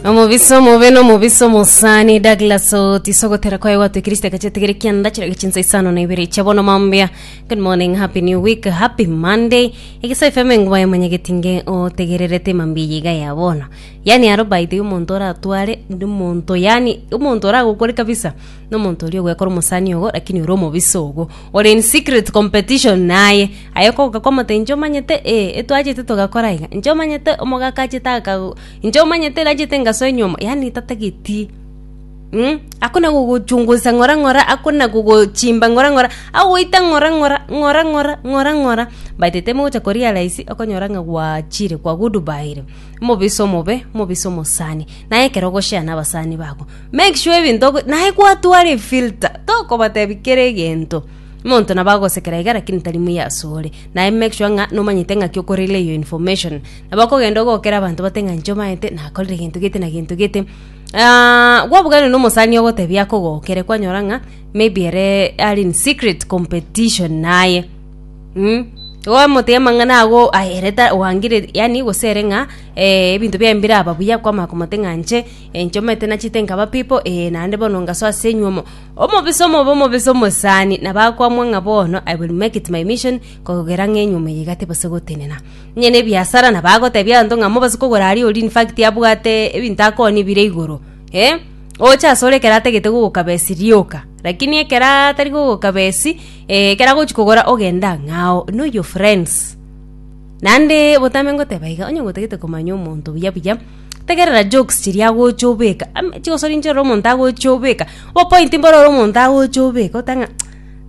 omobisa omobe na omobisa omosani douglas otiso gotera kwaye gwatwikire chitaka chiatigere kianda chirage chinsa isano na ibere chia bono mambia good morning happy new week happy monday egesa efeme nguba yamanyegeti nge otegererete mambia eye iga ya bono yani aro by the way omonto oratware ndi omonto yani omonto oragokore kabisa na omonto oria ogwekora omosani ogo lakini ore omobisa ogo ore in secret competition naye Aye kogoka kw'omote inche omanyete, ee, etwachete togakora aiga, inche omanyete omogaka achete aka, inche omanyete nachete ngasoe nyomba, yaani tatageti mh, akona gogochungusa ng'ora ng'ora, akona gogochimba ng'ora ng'ora, agoita ng'ora ng'ora, ng'ora ng'ora, ng'ora ng'ora, but temogocha ko realize okonyora ng'a gwachire kwa goodbyire, omobisa omobe, omobisa omosani, naye ekero ogoshare na abasani babo, make sure ebinto ogo naye gwatwara efilter, tokobatebi kera egento. Monto nabo agosekera iga lakini tari muya asore. Naye make sure ng'a nomanyete ng'aki okorire eyo information. Nabo okogenda ogokera abanto bate ng'a inche omanyete nakorire gento gete na gento gete. Aah gwabuganire na omosani ogotebia akogokere kwanyora ng'a maybe ere are in secret competition naye. Mh gwamotiga amang'ana ago aya ere ta wangire yaani gose ere ng'a eeh ebinto biaye mbiraba buya kwamanya komote ng'a inche, inche omanyete nachete nkaba people eeh naende bono ngasoa ase enyuomo. Omobisa omobe omobisa omosani nabakwamwa ng'a bono I will make it my mission kogera ng'a enyume ye igati base gotenena. Onye nebiasara nabagotebia abanto ng'a mobase kogora aria oria in fact abwate ebinto akooni bire igoro eh oche asore ekero atagete gogokaba esi rioka lakini ekero atari gogokaba esi eh ekero agochi kogora ogende ang'e ao know your friends. Naende botambe ngoteba iga onye gotagete komanya omonto buya buya. Tegerera jokes chiria agocha obeka, am- chigosori inche ore omonto agocha obeka, obopointi mbore ore omonto agocha obeka ote ng'a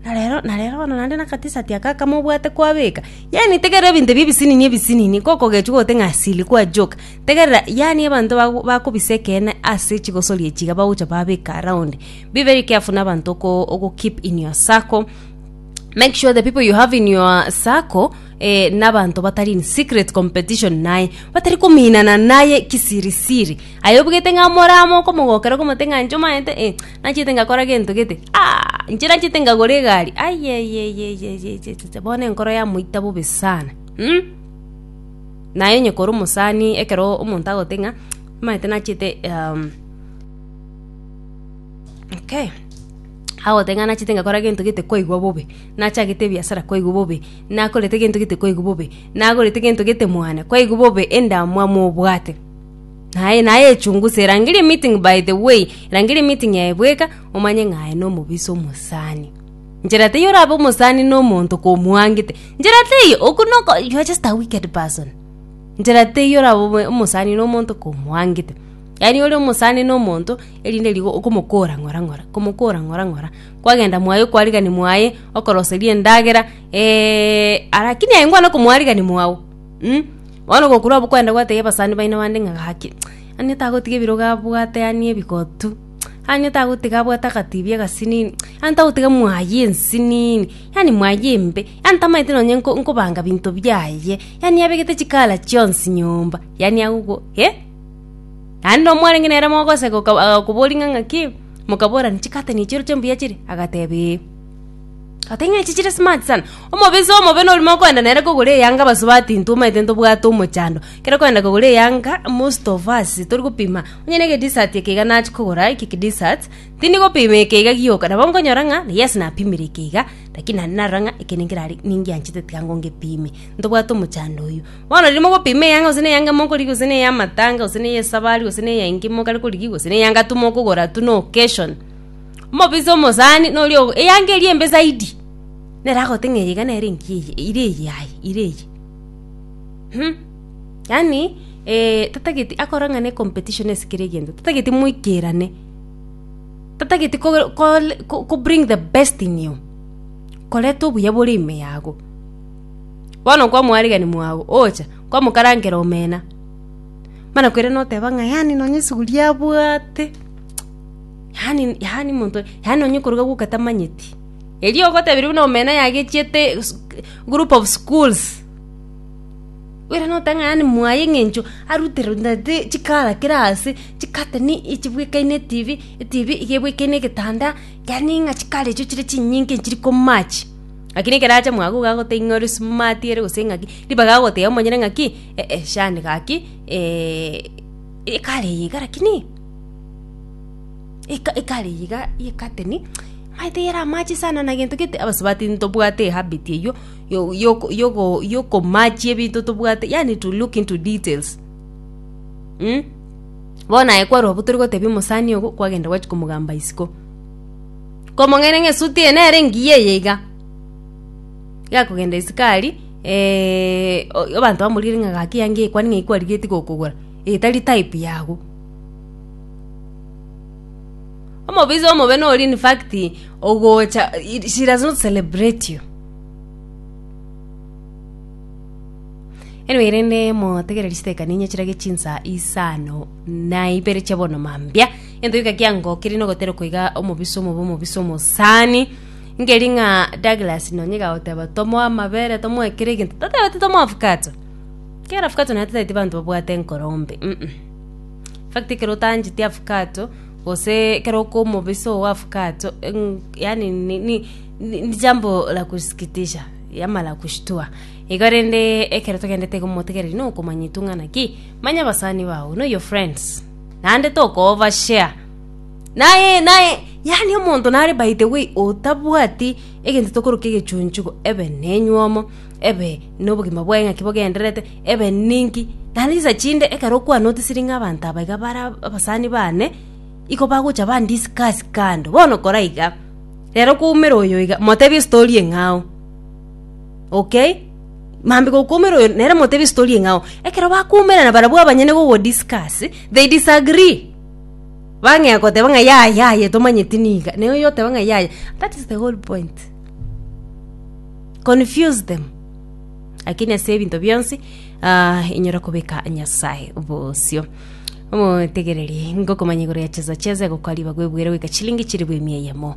na rero na rero bono naende na akatisati aka akamo obwate kwabeka, yaani tegerera ebinto ebi ebisinini ebisinini ngokogechwa ogote ng'a silly kwa joke, tegerera yaani abanto bago bakobisa ekeene ase chigosori echi iga bagocha babeka around. Be very careful na abanto oko ogo keep in your circle, make sure the people you have in your circle. eh, n'abanto batari in secret competition naye batari kominana naye kisirisiri aye obugete ng'a moramo okomogokera okomote ng'a nche omaete eh, nachete ngakora gento gete ah, nche nachete ngagora egari ayeyeyeyeyeyeye bono enkoro yamoita bobe sana mm? naye onye kore omosani ekero omonto agote ng'a maete nachete um, okay agote ng'a nachete ngakora gento gete kwaigwa bobe Nachagete ebiasara kwaigwa bobe, nakorete gento gete kwaigwa bobe, nagorete gento gete mwane kwaigwa bobe, endamwamu obwate. Aye naye echungusa, erangerie meeting by the way, erangerie meeting yaye bweka, omanye ng'a aye nomobisa omosani. Nchera teiyo orabe omosani na omonto komwangete, nchera teiyo, oku noko you are just a wicked person. Nchera teiyo orabe omo- omosani na omonto komwangete. Yaani ore omosani na omonto, erinde rigo okomokora ng'ora ng'ora, komokora ng'ora ng'ora, kwagenda mwaye okwarigani mwaye okoroseria endagera arakini aye ngwane komwarigani mwao mm bono ogokura obo kwenda gotebia abasani baino bande ng'a gaki onye tagotiga ebirogo abwate yaani ebigotu onye tagotiga abwate agatibi agasinini onye tagotiga mwaye ensinini yaani mwaye embe yaani tamaete nonye nko nkobanga binto biaye yaani abegete chikara chionsi nyomba yaani agogo eh. Naende na omwarenge nere mogoseka oka- agakoboria ng'a ng'aki, mokaborania, Chikatani echi oroche mbuya chire? Agateba, Ee. Agoteba, Ing'ana echi chire smart sana, omobisa omobe nori mokoenda nere kogora eyanga abaso batintwe omanyete ntobwate omochando, ekero okoenda kogora eyanga most of us tori gopima, onye na egedessert eke iga nachia kogora eke kidessert, tindi gopima eke iga gioka, nabo nkonyora ng'a yes napimire eke iga, lakini naende narora ng'a eke ninkerare ningianchete tiga ngo ngepime, ntobwate omochando oyio. Bono riria mogopima eyanga, gose neyanga mokorigia, gose neyamatanga, gose neyesabari, gose neya enki mokare korigia, gose neyanga tu mokogora tu na occasion, omobisa omosani noria ogo eyanga eria embe zaidi, nere agogote ng'a eye iga nere enki eye ire eye aye ire eye hum. Yaani tatageti akore ng'a ne competition ase kera egento, tatageti moikerane, tatageti ko ko bring the best in you koreta obuya bore ime yago. Bono nkwa omwarigani mwao ocha, nkwamokarankera omena, mana kwere noteba ng'a yaani nonye esuguri abwate, yaani yaani monto yaani nonye okoroga gwoka tamanyeti. Erio ogotebiwa buna omena yagechiete sk group of schools, bwire note ng'a yaani mwaye eng'encho aruterwe naende chikara kera ase, chikateni echibwekaine etibi, etibi iga ebwekaine egetanda, yaani ng'a chikara echio chire chinyinge chiri komatch. Lakini ekero acha mwago iga agoteba ing'ee ore smart ere gose ng'aki, ribaga agoteba omonyene ng'aki, eeh eh shani gaki ekare eye iga lakini eka ekare eye iga ye curtain maete yere amache sana na gento gete abasubati ntobwate ehabit eywo yo- yoko yogo yokomachia ebinto tobwate yaani to look into details mh. Bono aye kwarwa abwo torigotebi omosani ogo kwagenda gwachi komogamba isiko. Komong'aini ng'a esuti eye nere engiya eye iga, iga akogenda esikari abanto bamorire ng'a gaki eyanga eye kwani ng'ai kwarigeti gokogora, eye tari type yago. Omobisa omobe nore infact ogocha she does not celebrate you. Anyway rende motegereri chitekane inye chirage chinsa isano na ibere chia bono mambia. Gento gika kiangokire nogotera koiga omobisa omobe omobisa omosani ngeri ng'a Douglas nonye gagoteba tomoe amabere tomoe kera egento tatebete tomoe avocado kera avocado naye tataeti abanto babwate enkorombe mm fact ekero otancheti avocado gose ekero okoa omobisa ogo wa avocado mm yaani ni ni ni jambo la kusikitisha ama la kushtua igo rende ekero togendete iga omotegereri nokomanya etung'ana ki manya abasani bago know your friends. naende tokoba share. Naye naye yaani omonto nare by the way otabwati egento tokoroka egechunchugo ebe nenywomo ebe nobogima bwaye ng'aki bogendererete ebe ninki naende chisa chinde ekero okwanotisiri ng'a abanto aba iga bare abasani bane iko bagocha ba discuss kando bono kora iga rero kwaumera oyo iga motebie story eng'ao. okay mambe gokumera oyo nere motebie story eng'ao ekero bakumerana barabwo abanyene gogodiscuss they disagree bang'ea goteba ng'a yaya yaya tomanyeti niga naye oyo oteba ng'a yaya that is the whole point confuse them lakini ase ebinto bionsi ah, inyora kobeka nyasaye bosio omotegereri ngokomanya igoro ya chesa chesa egokwa ribaga ebwere goika chilingi chilifu emia eyemo